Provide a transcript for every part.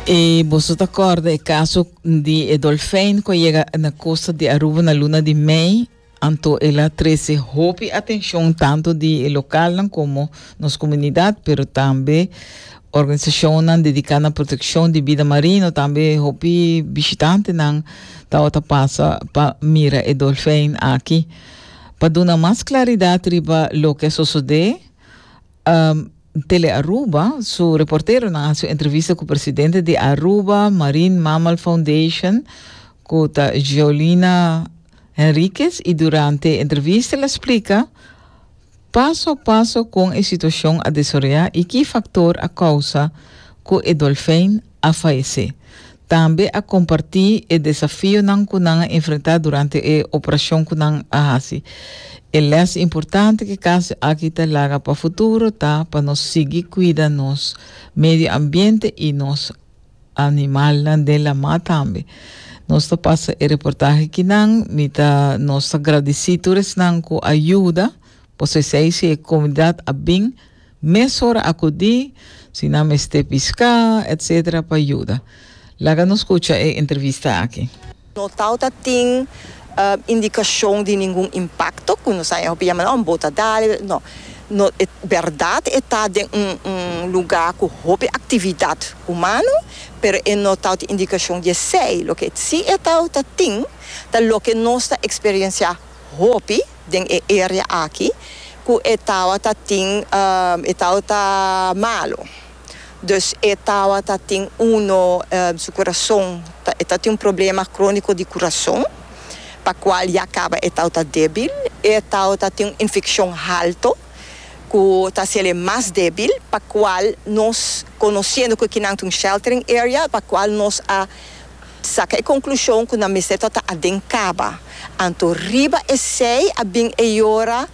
E boso ta corda e caso di e dolfijn cu llega na costa di Aruba na luna di mei, anto el a trece hopi atencion tanto di e localnan como nos comunidad, pero tambe organisacionnan dedica na proteccion di bida marino, tambe hopi bishitantenan tawata pasa pa mira e dolfijn aki. Pa duna mas claridad riba loke a sosode, Tele Aruba su reporteronan a haci un entrevista cu presidente di Aruba Marine Mammal Foundation cu ta Geolina Henriquez y durante e entrevista el a splica paso a paso con e situacion a desoroya y ki factor a causa cu e dolfijn a faesé. Tambe a kompartí e desafionan ku nan a enfrentá durante e operashon ku nan a hasi. E lès importante ku e kaso aki ta laga pa futuro ta pa nos sigui kuida nos medio ambiente i nos animalnan den lamá tambe. Nos ta pasa e reportahe aki nan, mi ta nos ta gradisí tur esnan ku a yuda, por so esei si e komunidat a bin Mesora akudí si nan mester piská, etc. Pa yuda. Laga nos kucha e entrevista aki. No tawta tin indikashon di ningun impakto ku nos haña hopi yama, un bota dal, no. No e bèrdat e ta den un un lugá ku hopi aktividat humano, pero e no tawta indikashon di esei. Loke si e tawta tin ta loke nos ta eksperensiá hopi. den e area aki cu e tawata tin e tawata malo dus e tawata tin uno su curason ta e ta tin un problema cronico di curason pa cual ya caba e tawata debil e tawata tin un infeccion halto cu ta haciel e mas debil pa cual nos conociendo cu e kinan ta un sheltering area pa cual nos a Saca e conclusion cu nan mester ta ta aden caba. Anto riba esey a bin e yora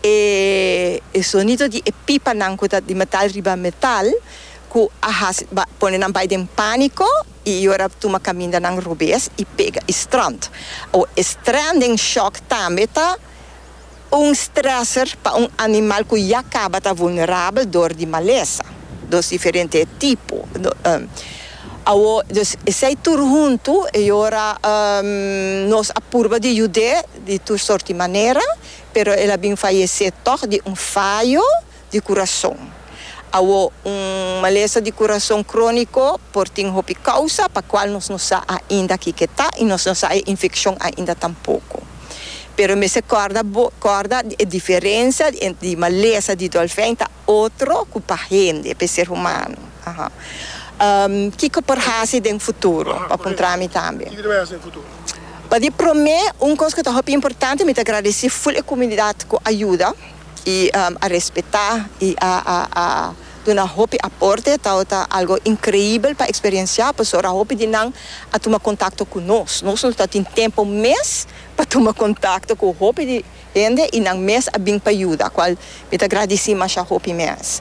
e e sonido di e pipanan cu ta di metal riba metal cu a haci ba pone nan bay den panico y yora tuma caminda nan robes y pega y strand. Awo e stranding shock tambe ta Un stresser pa un animal ku ya kaba ta vulnerabel dor di malesa. Dos diferente e tipo. Awo, dus esei tur huntu e ora nos a purba di yud'é di tur sorti manera, pero el a bin fayesé tòg di un fayo. di kurason. Awo, un malesa di kurason króniko por tin hopi kousa pa kual nos no sa ainda kiko ta i nos no sa e infekshon ainda tampoko. Pero mester kòrda bo kòrda di e diferensia di entre di malesa di dòlfèn ta otro ku pa hende, pa e ser humano. Kiko por hasi den futuro? Bo a puntra mi tambe. Pa di promé, un kos ku ta hopi importante, mi ta gradesí ful e kumunidat ku a yuda. i a respetá i a a duna hopi aporte ta ta algo inkreibel pa eksperensiá pasobra hopi di nan a tuma kontakto ku nos. Nos no ta tin tempu mes pa tuma kontakto ku hopi di hende i nan mes a bin pa yuda kual mi ta gradisí masha hopi mes.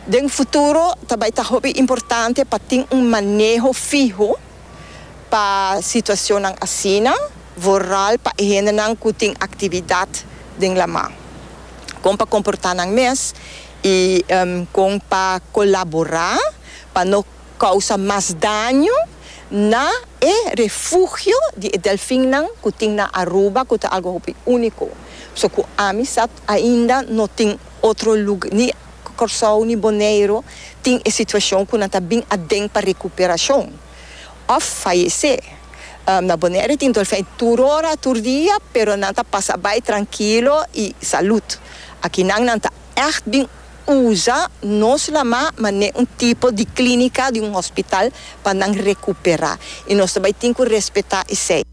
Den futuro ta bai ta hopi importante pa tin un maneho fiho Pa situacionnan asina, vooral pa e hendenan cu tin actividad den lama, con pa comporta nan mes y con pa colabora pa no causa mas daño na e refugio di e delfinnan cu tin na Aruba cu ta algo hopi unico, so cu Amisat ainda no tin. Otro lug, ni Kòrsou ni Boneiru tin e situashon ku nan ta bin aden pa rekuperashon òf fayesé. Na Boneiru tin dolfèn tur ora, tur dia, pero nan ta pasa bai trankilo i salud. Akinan nan ta ègt bin usa nos lamá manera un tipo di klínika di un hospital pa nan rekuperá i nos ta bai tin ku respetá esei.